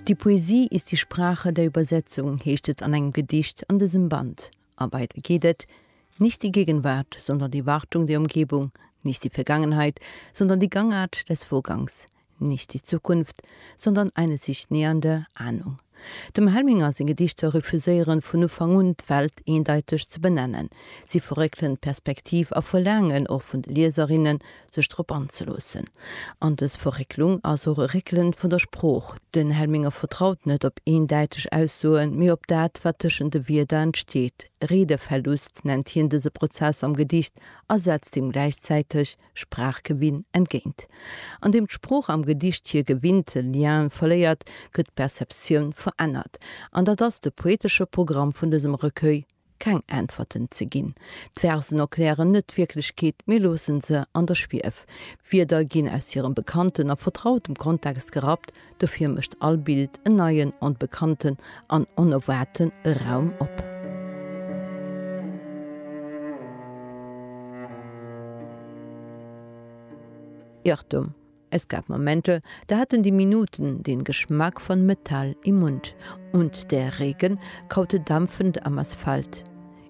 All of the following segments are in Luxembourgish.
Die Poesie ist die Sprache der Übersetzung heescht et an engem Gedicht an dësem Band. A weider geet et, Nicht die Gegenwart, sondern die Wartung der Umgebung, nicht die Vergangenheit, sondern die Gangart des Vorgangs, nicht die Zukunft, sondern eine sich nähernde Ahnung. Dem Helminger seng Gedichter refuséieren vun Ufank un d'Welt eendeiteg ze benennen. Si verréckelen d'Perspektiv a verlaangen och vun de Lieserinnen, sech drop anzeloossen. An dës Verrécklung ass och e Réckelen vun der Sprooch. Den Helminger vertraut net op eendeiteg Aussoen, mee op dat, wat tëschent de Wierder entsteet. Redeverlust nennt hien dëse Prozess am Gedicht a setzt deem gläichzäiteg Sprachgewinn entgéint. An deem d'Sprooch am Gedicht hir gewinnte Lien verléiert, gëtt d'Perceptioun verännert. An dat ass de poetesche Programm vun dësem Recueil, keng Äntwerten ze ginn. D'Versen erklären net d'Wierklechkeet, mee loosse se an der Schwief. Wierder ginn aus hirem bekannten a vertrautem Kontext gerappt, Dofir mécht all Bild en neien, onbekannten an onerwaarte Raum op. Irrtum, Es gab Momente, da haten déi Minuten den Geschmack von Metall im Mund und der Regen kaute dampfend am Asphalt.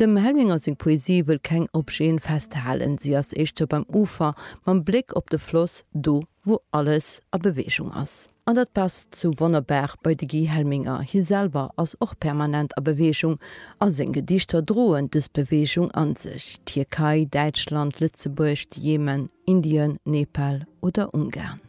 Dem Helminger seng Poesie wëll keng Objeten festhalen, si ass éischter beim Ufer, mam Bléck op de Floss, do wou alles a Beweegung ass. An dat passt sou wonnerbar bei de Guy Helminger, hie selwer ass och permanent a Beweegung, a seng Gedichter droen dës Beweegung an sech, Tierkei, Däitschland, Lëtzebuerg, de Jemen, Indien, Nepal oder Ungarn.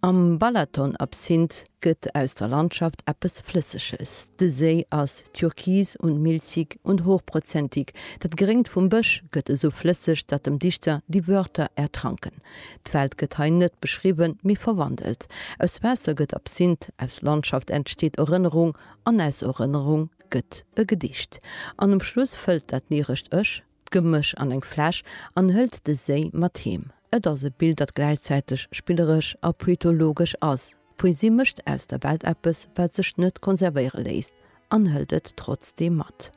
Am Balaton-Absinth gëtt aus der Landschaft eppes Flësseges. De Séi ass türkis und milchig und hochprozentig, dat Gréngt vum Bësch gëtt esou flësseg, datt dem Dichter déi Wörter ertranken. D'Welt gëtt hei net beschriwwen, mee verwandelt. Aus Waasser gëtt Absinth, aus Landschaft entsteet Erënnerung an aus Erënnerung gëtt e Gedicht. An um Schluss fëllt dat lyrescht Ech d'Gemësch an eng Fläsch an hëlt de Séi mat heem. Et ass e Bild, dat gläichzäiteg spilleresch a poetologesch ass. D'Poesie mécht aus der Welt eppes, wat sech net konservéiere léisst, an hëlt et trotzdeem mat.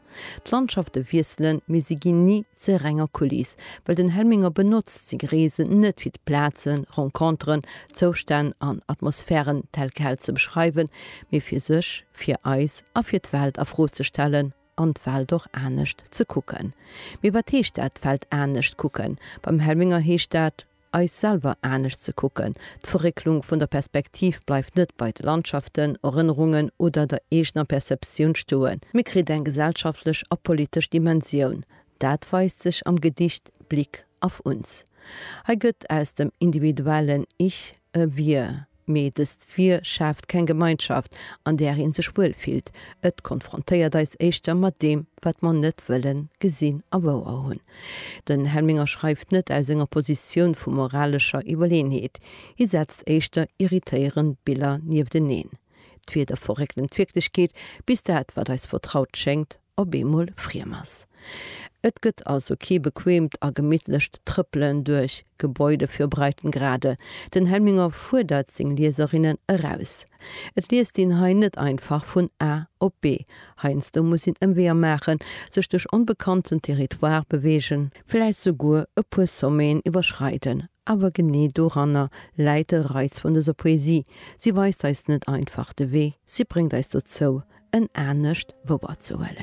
D'Landschafte wiesselen, mee si ginn ni zur renger Kuliss, well den Helminger benotzt seng Reesen net fir d'Plazen, Renconteren, Zoustänn an Atmosphären tel quel ze beschreiwen, mee fir sech, fir eis a fir d'Welt a Fro ze stellen. an d'Welt och anescht ze kucken. Mee wat heescht dat, d'Welt anescht kucken? Beim Helminger heescht dat, eis selwer anescht ze kucken. D'Verrécklung vun der Perspektiv bleift net bei de Landschaften, Erënnerungen oder der eegener Perceptioun stoen, mee kritt eng gesellschaftlech a politesch Dimensioun. Dat weist sech am Gedicht Blick auf uns. Hei gëtt aus dem individuellen Ich e Wir, Mee dëst Vir schaaft keng Gemeinschaft, an där ee sech wuel fillt. Et konfrontéiert eis éischter mat deem, wat mer net wëllen gesinn a wouer hunn. Den Helminger schreift net aus enger Positioun vu moralescher Iwwerleenheet. Hie setzt éischter irritéierend Biller niefteneen. D'Wieder verréckelen d'Wierklechkeet, bis dat, wat eis vertraut schéngt, op eemol friem ass. Et gëtt also kee bequeemt a gemittlecht Trëppelen duerch Gebäude fir Breitengrade. Den Helminger fuerdert seng Lieserinnen eraus. Et liest een hei net einfach vun A op B. Heiansdo muss een Ëmweeër maachen, sech duerch onbekannten Territoire beweegen, vläicht souguer e puer Sommeten iwwerschreiden, awer genee doranner läit de Reiz vun dëser Poesie, si weist eis net einfach de Wee, si bréngt eis dozou, en anescht wouerzehuelen.